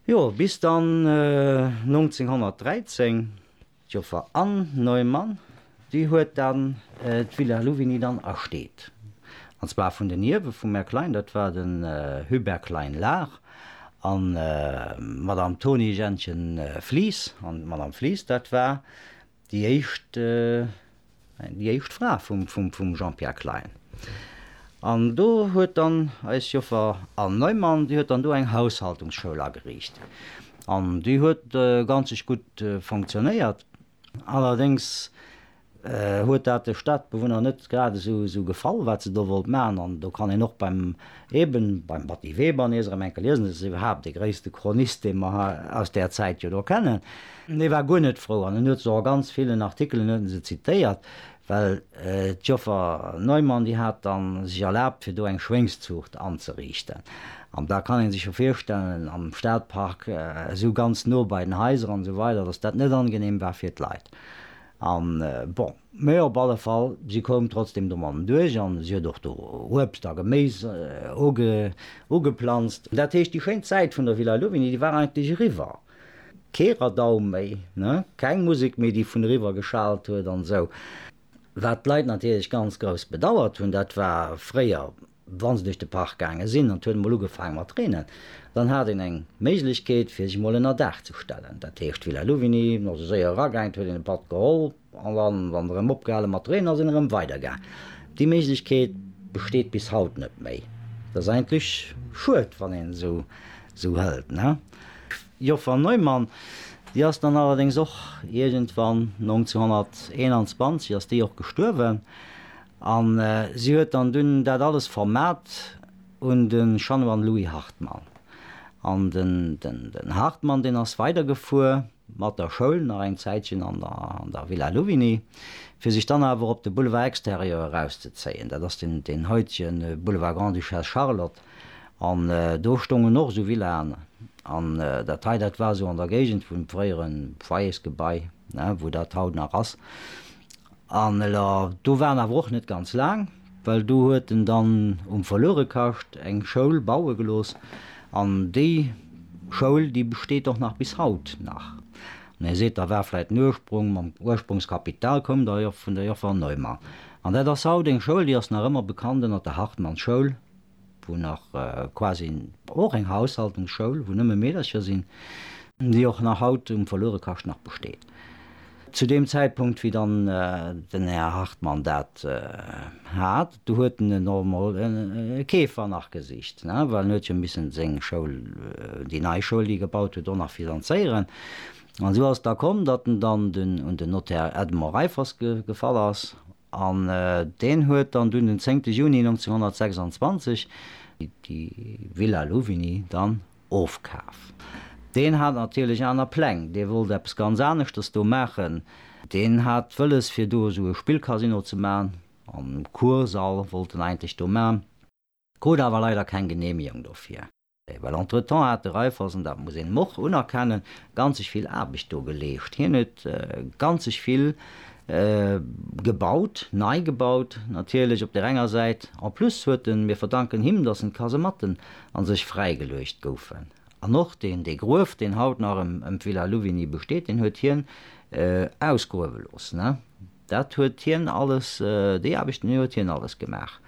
Jo, bis dann 1913, d'Joffer Anne Neumann, déi huet dann d'Villa Louvigny dann ersteet. An zwar vun den Ierwe vum Här Klein, dat war den Hubert Klein-Lahr an d'Madame Toni-Jeanchen Flies. An d'Madame Flies, dat war Déi éischt, déi éischt Fra vum Jean-Pierre Klein. An do huet dann eis Joffer Anne Neumann, déi huet dann do eng Haushaltungsschoul ageriicht. An déi huet ganzeg gutt fonctionnéiert. Allerdéngs huet dat de Stadbewunner net grad esou gefall, wat se do wollt maachen. An do kann een och beim, eben beim Batty Weber nees erëm enke liesen, dat ass iwwerhaapt dee gréisste Chronist, dee mer aus där Zäit jo do kennen, An hie war guer net frou an en huet se och a ganz villen Artikelen huet en se zitéiert, well d'Joffer Neumann, déi hat da sech erlaabt fir do eng Schwéngszuucht anzeriichten. An da kann ee sech jo virstellen am Stadpark, esou ganz no bei den Haiser an esou weider, datt dat net angenehm war fir d'Leit. An bon, mä op alle Fall, si koum trotzdem domadden duerch an si huet och do Uebst a Geméis ugeplanzt. Dat heescht, déi schéin Zäit vun der Villa Louvigny, déi war eigentlech eriwwer. Kee Radau méi, ne? Keng Musek méi, déi vun eriwwer geschaalt huet an esou. Wat d'Leit natierlech ganz grouss bedauert hunn, dat war fréier, wa se duerch de Park gaange sinn an et huet emol ugefaang mat reenen, dann hat een eng Méiglechkeet, fir sech emol ënnerdaach ze stellen. Dat heescht, d'Villa Louvigny, wann se séier eragaangen, huet een e Patt geholl, An dann, wann se erëm opgehalen mat reenen, sinn erëm weider gaang. Déi Méiglechkeet besteet bis haut net méi. Dat ass eigentlech schued, wann een et esou hëlt, ne? D'Joffer Neumann, déi ass dann allerdéngs och iergendwann 1921 ass déi och gestuerwen, a si huet dann dunn dat alles vermat un de Chanoine Louis Hartmann. An den Hartmann, deen ass weidergefuer. mat der Schoul nach eng Zäitchen an der Villa Louvigny, fir sech dann awer op de Boulevard Extérieur erauszezéien, dat ass deen haitege Boulevard Grande-Duchesse Charlotte, an do stoungen och esou Villaen, an dat hei, dat war esou an der Géigend vum fréiere Foyersgebai, wou dat haut nach ass, an do war en awer och net ganz laang. Well do huet en dann um Verluerekascht eng Schoul baue gelooss, an déi Schoul, déi besteet och nach bis haut nach. An Dir seet, da war vläit den Ursprung, mam Ursprungskapital koum der jo vun der Joffer Neumann. An dat ass haut eng Schoul, déi ass nach ëmmer bekannt ënner der Hartmannschoul, wou nach quasi och eng Haushaltungsschoul, wou nëmme Meedercher sinn, déi och nach haut um Verluerekascht nach besteet. Zu deem Zäitpunkt, wéi dann den Här Hartmann dat hat, du huet en elo emol e Keefer nach gesicht, well en huet jo missen seng Schoul, déi nei Schoul, déi e gebaut huet, och nach finanzéieren. An esou ass et da komm, datt en dann un den Notaire Edmond Reiffers gefall ass, An deen huet dann dunn den 10 Juni 1926 déi Villa Louvigny dann ofkaf. Deen hat natierlech aner Pläng, dee wollt eppes ganz aneschtes do maachen. Deen hat wëlles fir do esou e Spillcasino ze maachen, an Kursall wollt en eigentlech do maachen. krut awer leider keng Genehmigung dofir, well entretemps hat de Raiffeisen, dat muss een em och unerkennen, ganzeg vill Aarbecht do geleescht. Hien huet ganzeg vill gebaut, nei gebaut natierlech op där enger Säit, en plus huet en, mir verdanken him, dass en d'Kasematten an sech fräigeluecht goufen an och deen, dee Gruef, deen haut nach em d'Villa Louvigny besteet, deen huet hien ausgruewe loossen. Dat huet hien alles, déi Aarbechten, déi huet hien alles gemaach.